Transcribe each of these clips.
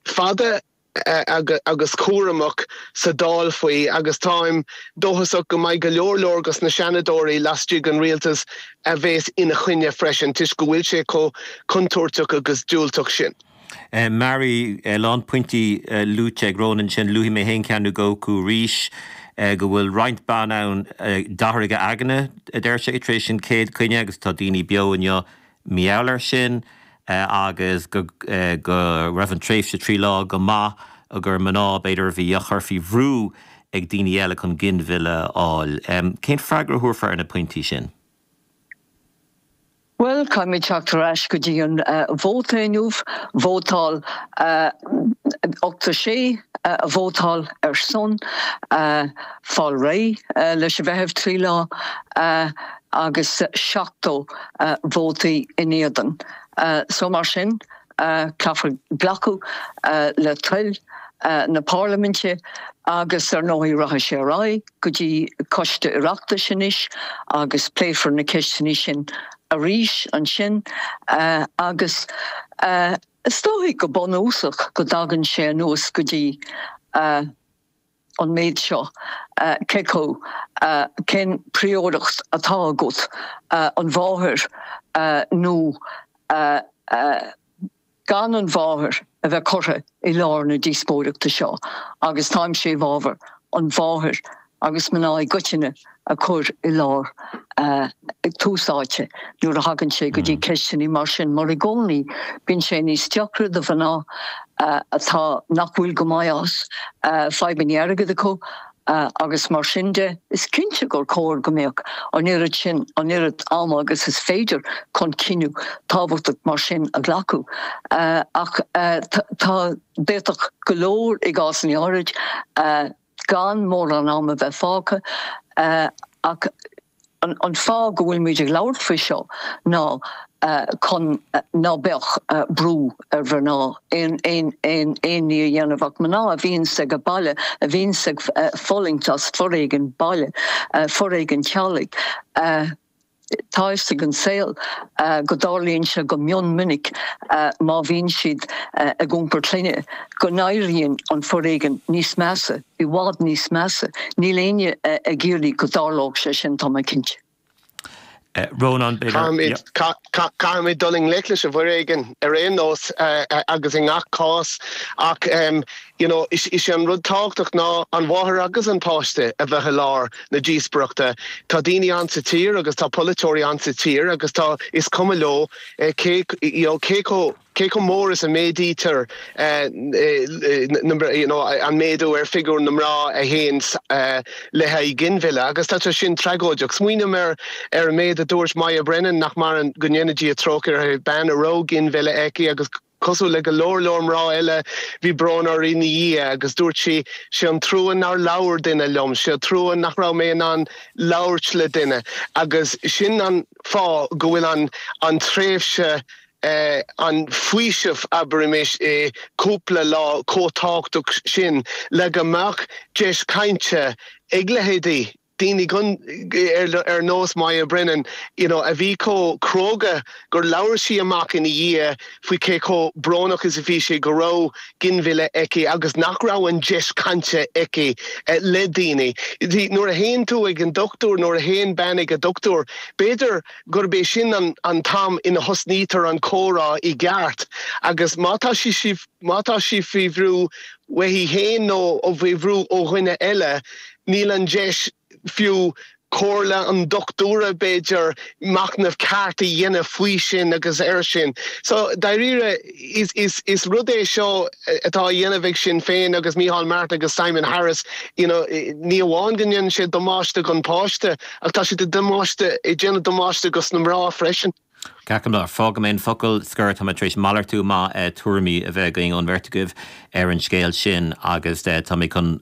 fada agus cúramach sa Dáil faoi agus táim dóchasach go mbeidh go leor leor des na Seanadóirí lastigh den Rialtas a bhéas ina choinne freisin toisc go bhfuil sé chomh contúirteach agus diúltach sin. Mary, A lán pointí luaite ag Ronan sin. Luafaidh mé féin ceann nó dhó acu arís. Go bhfuil roinnt ban ann a d'athraigh a aigne a deir sé tar éis an chéad coinne agus tá daoine beo inniu mar gheall air sin agus go raibh an tréimhse trí lá go maith agus gur mná b'fhéidir a bhí á gcur faoi bhrú ag daoine eile chun ginmhilleadh a fháil. Cén freagra a thabharfá ar na pointí sin? Bhuel, caithfimid teacht ar ais go dtí an vóta inniu. Vótáil 86 a vótáil ar son fáil réidh leis an bhfeitheamh trí lá. agus 70 vóta in éadan so mar sin caithfear glacadh le toil na Parlaiminte agus ar ndóigh rachaidh sé ar aghaidh go dtí Coiste Oireachtais anois agus pléifear na ceisteanna sin arís ansin agus is dóigh go bunúsach go dtagann sé anuas go dtí an méid seo, cé chomh, cén príoracht atá agat, an mháthair nó gan an mháthair a bheith curtha i lár na díospóireachta seo agus táimse i bhfabhar an mháthair agus mná i gcoitinne a chur i lár, tús áite nuair a thagann sé go dtí ceisteannaí mar sin mar i gcónaí bíonn sé níos deacra do mhná atá nach bhfuil go maith as, fadhbannaí airgead acu agus mar sin de. Is cinnte gur chóir go mbeadh an oiread sin, an oiread ama agus is féidir chun cinneadh tábhachtach mar sin a ghlacadh ach tá, d'fhéadfadh go leor i gcásannaí áirid. gan mórán am a bheith fágtha, ach an fáth go bhfuil muid ag labhairt faoi seo ná chun ná beadh brú ar mhná aon ní a dhéanamh ach mná a bhíonns sa bhaile, a bhíonns ag fulaingt as foréigean baile, foréigean teaghlaigh. Tá fhios ag an saol go dtarlaíonn sé go mion minic má bhíonn siad ag iompar clainne go n-éiríonn an foréigean níos measa, i bhfad níos measa. Níl éinne ag iarraidh go dtarlódh sé sin, tá mé cinnte. Rónán, B'fhéidir, yeah. Caithfimid dul i ngleic leis an bhforéigean ar aon nós agus i ngach cás ach You know, is é an rud tábhachtach ná an mháthair agus an páiste a bheith i lár na díospoireachta. Tá daoine ann sa tír agus tá polaiteoirí ann sa tír agus tá, is cuma leo cé, you know, cé chomh, cé chomh mór is a méadaítear na, you know, an méadú ar figiúr na mná a théann le haghaidh ginmhilleadh agus tá sé sin tragóideach. Smaoiním ar, ar an méid a dúirt Moya Brennan, nach maireann, go ndéana Dia trócaire uirthi, bean a raibh ginmhilleadh aici agus, Cosúil le go leor leor mná eile, bhí brón uirthi ina dhiaidh agus dúirt sí, 'sé an trua nár labhair duine liom, 'sé an trua nach raibh mé in ann labhairt le duine'. Agus sin an fáth go bhfuil an an tréimhse, an faoiseamh abraimis, cúpla lá chomh tábhachtach sin le go mbeadh deis cainte ag leithéidí daoine gan, ar nós Moya Brennan, you know, a bhí chomh cróga gur labhair sí amach ina dhiaidh faoi cé chomh brónach is a bhí sé go raibh ginmhilleadh aici agus nach raibh an deis cainte aici le daoine. Nuair a théann tú ag an dochtúir, nuair a théann bean ag a dochtúir, b'fhéidir gurb é sin an an t-am ina thosnaítear an comhrá i gceart agus má tá sí sí má tá sí faoi bhrú uaithi féin nó faoi bhrú ó dhuine eile, Níl an deis, fiú comhairle an dochtúra, b'fhéidir, machnamh ceart a dhéanamh faoi sin agus air sin. So, dairíre, is rud é seo atá á dhéanamh ag Sinn Féin agus Micheál Martin agus Simon Harris, you know, ní amháin go ndéanann sé damáiste gon páiste ach tá siad ag damáiste, ag déanamh damáiste gus na mná freisin. Glacaim leis. Fágfaidh mé an focal scoir. Tá mé tar éis malartú maith tuairimí a bheith againn ón mbeirt agaibh ar an scéal sin agus tá mé chun,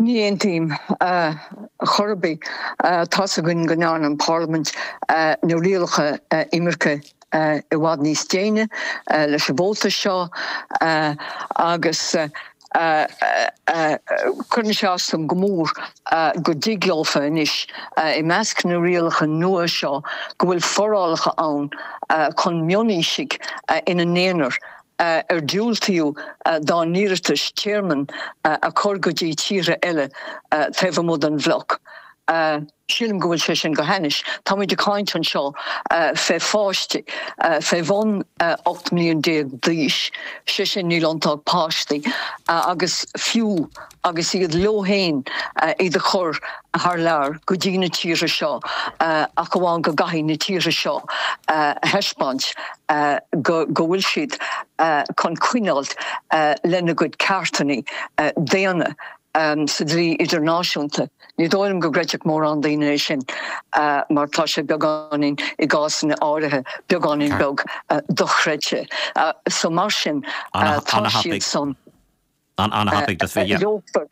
Ní aontaím chor ar bith. Tá's againn go ndearna an Pharlaimint na rialacha imirce i bhfad níos déine leis an vóta seo agus cuireann sé as dom go mór go dtig leofa anois i measc na rialacha nua seo go bhfuil forálacha ann chun mionaoisigh ina n-aonar a a ar diúltaíodh dá n-iarratais tearmainn a chur go dtí tíortha eile taobh amuigh den bhloc. Sílim go bhfuil sé sin go hainnis. Táimid ag caint anseo fé pháistí fé bhun 18 mbliana d'aois, sé sin níl iontu ach páistí agus fiú agus iad leo, chun, iad a chur thar lear go dtí na tíortha seo ach amháin go gcaithfidh na tíortha seo a thaispeáint go bhfuil siad chun coinneáil lena gcuid ceartanna daonna sa dlí idirnáisiúnta. Ní dóigh liom go gcreidfeadh mórán daoine é sin mar tá sé beagáinín, i gcásanna áirithe, beagáinín beag dochreidte. So mar sin tá siad san. An ana-thapaidh does bheith dhe. Leogfad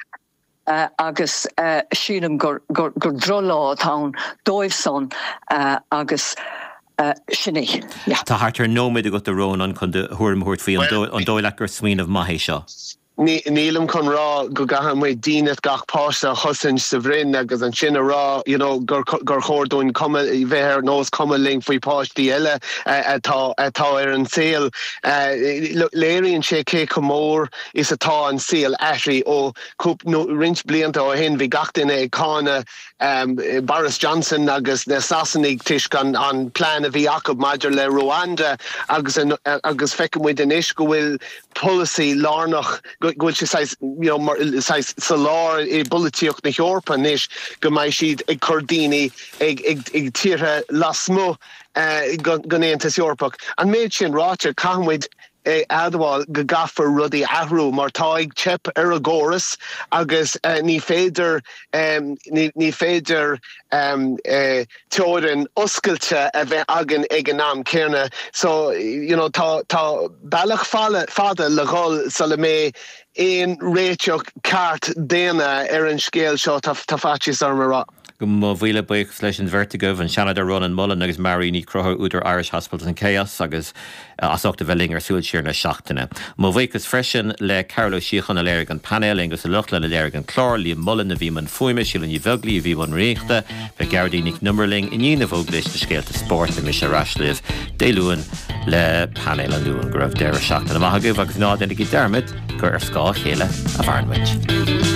agus sílim gur droch-lá atá ann dóibh san agus sin é, yeah. Tá thart ar nóiméad agat a Rónán chun do thuairim a thabhairt faoi. An dóigh leat gur smaoineamh maith é seo? Nílim chun rá go gcaithfidh muid dínit gach páiste a chosaint sa bhroinn agus ansin a rá you know gur chóir dúinn cuma bheith ar nós cuma linn faoi páistí eile atá atá ar an saol. Léiríonn sé cé chomh mór is atá an saol athraithe ó roinnt blianta ó shin. Bhí gach duine ag cáineadh Boris Johnson agus na Sasanaigh toisc an plean a bhí acu maidir le Rwanda agus feiceann muid anois go bhfuil polasaí lárnach, go bhfuil sé saghas, you know, mar saghas sa lár i bpolaitíocht na hEorpa anois go mbeidh siad ag cur daoine ag tíortha lasmuigh den Aontas Eorpach. An méid sin ráite, caithfimid a admháil go gcaithfear rudaí a athrú mar tá ag teip ar an gcóras agus ní féidir ní féidir teorainn oscailte a bheith againn ag an am céanna. So you know tá tá bealach fada le dhul sula mbeidh aon réiteach ceart daonna ar an scéal seo tá tá faitíos orm a rá. Mo mhíle buíochas leis an bheirt agaibh, an Seanadóir Rónán Mullen agus Marie O'Connor, údar Irish Hospitals in Chaos, agus as ucht a bheith linn ar Súil Siar na Seachtaine. Mo bhuíochas freisin le Carol Ó Síocháin a léirigh an painéal, Aonghus Ó Lochlainn a léirigh an clár, Liam Mullen a bhí i mbun fuaime, Síle Ní Bheaglaoí a bhí i mbun riaracháin, beidh Gearóidín Nic an Iomaire linn i ndiaidh na bhfógraíos le Scéalta Spóirt beidh mise ar ais libh Dé Luain le Painéal an Luain. Go raibh deireadh seachtaine maith agaibh agus ná déanaigí dearmad gur ar scáth a chéile a mhaireann muid.